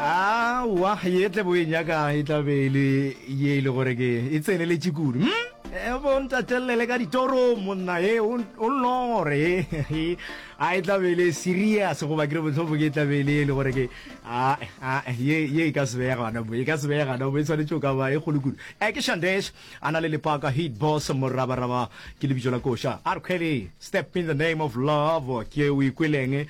aowa ye tle bo e nyakang e tla be e le ye e le gore ke e tseneletše kudu hm? Eh, bo ntatelele ka ditorong monna e o o nlongore e a e tla be e le serious goba ke re botlhofo ke e tla be e le e le gore ke a a ye ye e ka se beye gana bo e ka se beye gana bo e tshwanetse o ka ba e kgolo kudu e ke shandesh a na le lepaka hit boss morabaraba ke lebitso la koša a re kgwele step in the name of love ke o ikweleng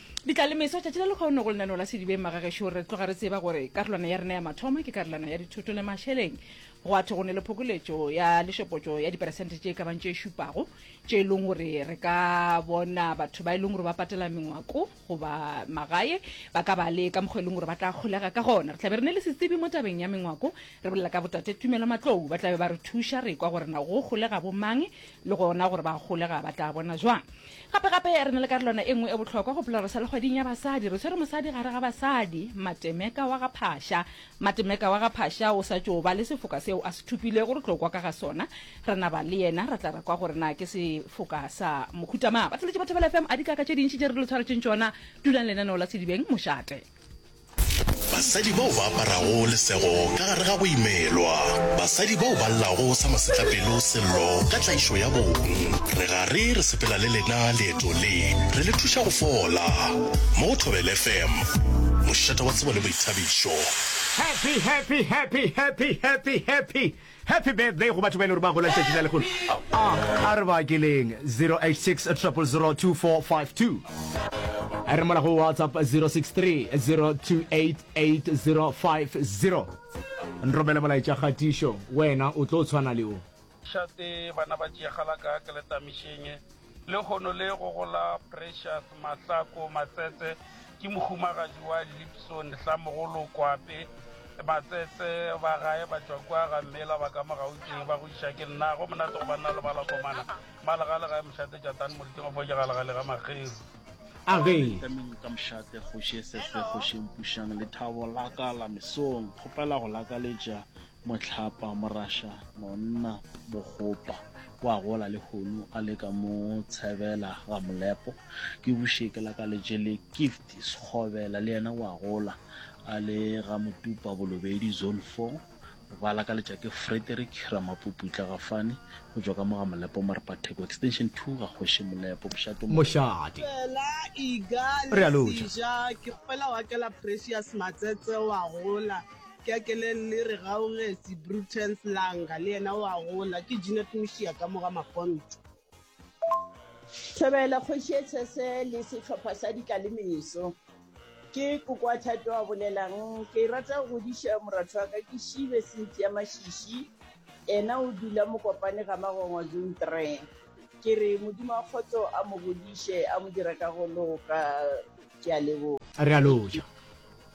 Di tla le meso, tšatši la lekgono go lenaneo la Sedibeng Magagešo re tloga re tseba gore karolwana ya rena ya mathomo ke karolwana ya dithoto le mašeleng. Go a thwe go ne le phokoletšo ya lešopotšo ya diperesente tše ka bang tše šupago tše e leng gore re ka bona batho ba e leng gore ba patela mengwako goba magae ba ka ba le ka mokgwa e leng gore ba tla kgolega ka gona. Re tlabe re ne le setsebi mo tabeng ya mengwako, re bolela ka botate Tumelo Matlou. Ba tlabe ba re thuša re kwa gore na go kgolega bo mang le gona gore ba gole ga ba tla bona jwang gape gape re na le karolwana e nngwe e bohlokwa go pela re sa lekgwading ya basadi re tshwere mosadi gare ga basadi matemeka wa ga phasha matemeka wa ga phasha o sa tšo ba le sefoka seo a se thupilego re tlo kwa ka ga sona re naba le yena re tla ra kwa gore na ke sefoka sa mokhutamang ba tleletše ba thebela fm a dikaka tše dintši tše re lo tshwaretšeng tšona dulang lenaneo la sedibeng mošate Basadi bao ba aparago lesego ka gare ga go imelwa. Basadi bao ba llago sa masetlapelo sello ka tlaišo ya bong. Re gare re sepela le lena leeto le, re le thuša go fola. Mo go Thobela FM, mošate wa tsebo le boithabišo. Happy, happy, happy, happy, happy, happy. Happy birthday go batho ba e le gore ba gola letšatši la lekgolo. A a re ba keleng 086 000 2452. A re mola go WhatsApp 063 028 8050. Nromele molaetša kgatišo, wena o tlo tshwana le o. Šate bana ba tšeegala ka keletamišeng. Lehono le go go la Precious Mahlako Matsetse ke mohumagadi wa Lipson Hlamogolo Kwape Matsetse. Ba gae ba tšwa kua ga Mmela ba ka mo Gauteng ba go iša ke nna. Go monate go banna le ba la komana. Malegale ga e mošate Jatane Moriting of Oja Galegale ga Makgeru. A re. Tameng ka mošate Kgoši Esese Kgoši Mpušang Lethabo la ka la mesong kgopela go lakaletša Mohlapa, Morasha, Nonna, Bogopa, o a gola lehono a le ka mo Tshebela, Gamolepo, ke buše ke la ka le jele Gift, Sekgobela, le yena o a gola a le ga Motupa, Bolobedi, Zone Four, ba la ka letša ke Frederick, Ramapupu, Tlagafane, go tšwa ka mo Gamolepo, Morepatheko, Extension Two, ga Kgoši Molepo, Mošate, Mošate, Fela Iga, Lesija, ke kgwela wa ke la Precious Matsetse, o a gola. Keakeleng le re gaogetše, Brutens Langa le yena o a gola, ke Jeanette Mushia ka mo ga Mapontšo. Thobela kgoši e tshese le sehlopha sa dika le meso. Ke Kokoa Thato a bolelang. Ke e rata go godiša moratho wa ka ke Shibe Cynthia Mashishi, ena o dula Mokopane ga Magongwa Zone Three. Ke re Modimo wa kgotso a mo godiše, a mo dire ka go loka. Ke a leboga. Re a loja.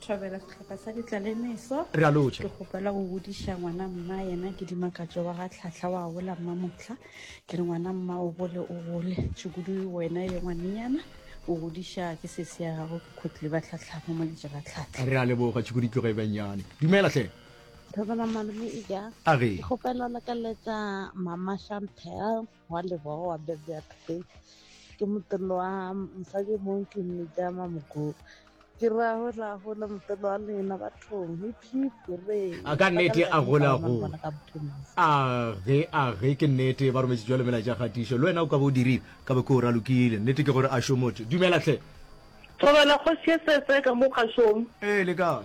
Thobela sehlopha sa ditlalemeso. Re a lotšha. Ke kgopela go godiša ngwana mma yena ke dimakatšo wa ga Tlhahla wa gola mma motlha. Ke re ngwana mma o gole o gole. Tšhukudu wena ye ngwanenyana o godiša ke sese ya gago ke khotli ba Tlhahla mo moletša ga Tlhahla. Re a leboga Tšhukudu tloga e benyane. Dumela hle. Thobela malome Ija. A re. Ke kgopela go lakaletša mama Chantel. wa lebogo wa bebea today ke motelo wa mosadi mong ke mmejama mogogo ke ra gola gola motelo wa lena bathong a ka nnete a gola go a ge a ge ke nnete ba rometse jalo mela ja gatišo le wena o ka bo o dirile ka be ke o ralokile nnete ke gore a šomotho dumelatlhe thobela kgosi e setse ka mo kgašong ee le kae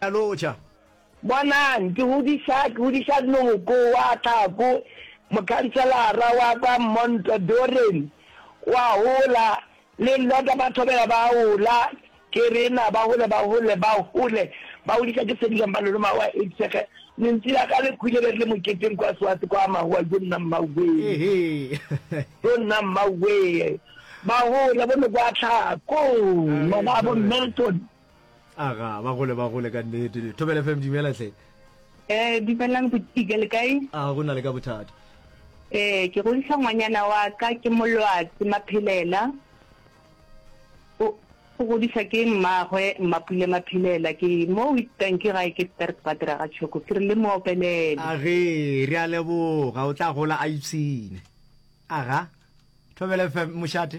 a no ja. Bonang, ke godiša, ke godiša Noko wa Tlhako, mokhanselara wa kwa Montdoren, o a gola, le Lloda ba thobela ba a gola, ke rena, ba gole, ba gole, ba gole, ba godiša ke sedikang ba lona, magoa a etsege, lentsi la ka le kgwile be re le moketeng kwa Swatse kwa, magoa, jo nna mmawee, jo nna mmawee, ba gole, bo Noko wa Tlhako, ngwana wa bo Milton. aga ba gole ba gole ka nnete thobela fm dumela tlhe eh dumelang go tiga le kae a go na le ka bothata eh ke go ntšha ngwanyana wa ka ke molwatsi maphelela o go disa ke mmagwe mmapule maphelela ke mo with bank ga ke sterk badira ga choko ke re le mo opelele a ge re a leboga o tla gola a ipsine aga thobela fm mošate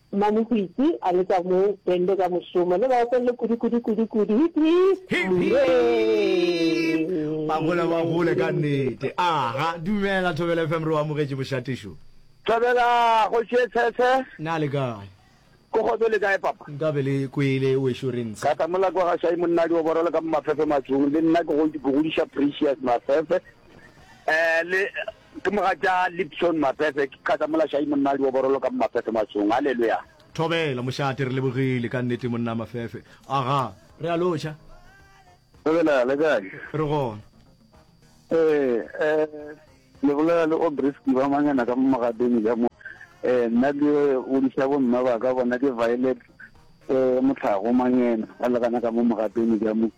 Mmamohwitsi a le ka mo bende ka mošomo le ba opelele kudu kudu kudu kudu hip hip. Hip hip! Ba gola ba gole ka nnete. Aha, dumela Thobela FM re o amogetše mošatišo. Thobela kgoši e tshetshe. Na le kae? Ko kgotso le kae papa? Nka be le kwele wešo re ntshe. Kata mola kwa gašai monna di oboro le ka mo mafefe matsung le nna ke go ke godiša precious mafefe eh le Ke mogatša Lipson Maphefe, ke kgatha mola Shayi monnaldi wa borolo ka mo Maphefe Matsong. Haleluya! Thobela, mošate, re lebogile ka nnete monna Maphefe. Aga, re a lotšha. Thobela, le kae? Re gona. Ee, eh, le bolela le Aubrey Sdiba Mangena ka mo Mogadeng ka mo. Eh, nna ke godiša bo mme ba ka, bona ke Violet, eh, Motlhago Mangena, ba le gana ka mo Mogadeng ka mo.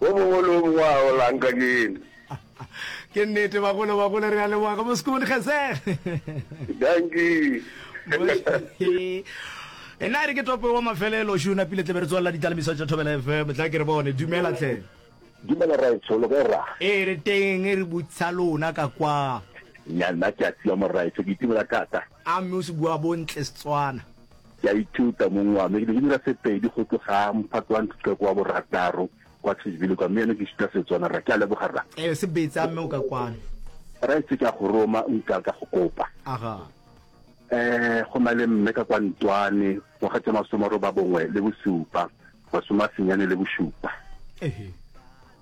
Wo mongwe le wo mongwe a o lanka ke ena. Ke nnete bagolo bagolo re a leboga ka mosiko modikgese. Dankie. e na re ke topo wa mafelelo šu na pile tlebe re tswalela ditalamiso tša thobela fm tla ke re bone dumela tlhe dumela raetso lo kae ra ee re teng re butsa lona ka kwa ya nna ke a tsiwa moraetso ke itumela thata a mme o se bua bontle setswana Ke a ithuta, mong wa me. Ke be ke dira Sepedi go tloga mphato wa ntlha go wa borataro kwa Tshivhile kwa, mme yana ke ithuta Setswana. Rra, ke a leboga, rra. Ee, se betsa, mme o ka kwano. Rra, etse ke a go roma, nka ka go kopa. Aga. Ee, go na le mme ka kwa Ntoane, ngwaga tša masome a robabongwe le bosupa, masome a senyane le bošupa. Ehe.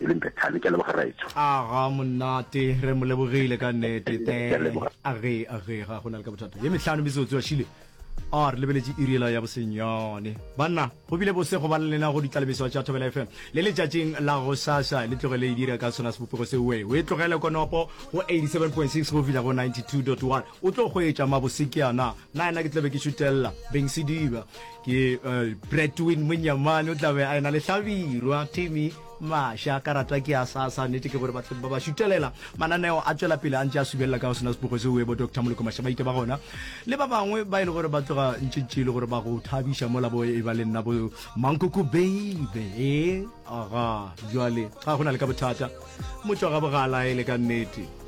E leng Bethane, ke a leboga Raetsho. Aga monate, re mo lebogile ka nnete. The, age, age, ga go na le ka bothata. Ye mehlano metsotso ya šile. a re lebeletše iriela ya bosenyane banna go bile bose go ba le lena go ditlalebeso tša thobela fm le letšatšing la go sasa le tloge le e dira ka sona sebopego se we o e tlogele konopo go 87.6 go fihla go 92.1 O tlo hwetša mabose ke a na. Na yena ke tla be ke šutelela beng sediba ke Bradwin Monyamane o tla be a ena le hlabirwa Timmy Masha ka ratwa ke a sa sa nete ke gore ba ba ba šutelela mananeo a tšwela pele a ntše a subelela ka go sena sepogo se uebo Doctor Moloko Masha ba ite ba gona le ba bangwe ba e le gore ba tloga ntše ntše e le gore ba go thabiša mo labo e ba le nna bo mankoko baby e aga jwale ga gona le ka bothata motšwa ga bogala e le ka nnete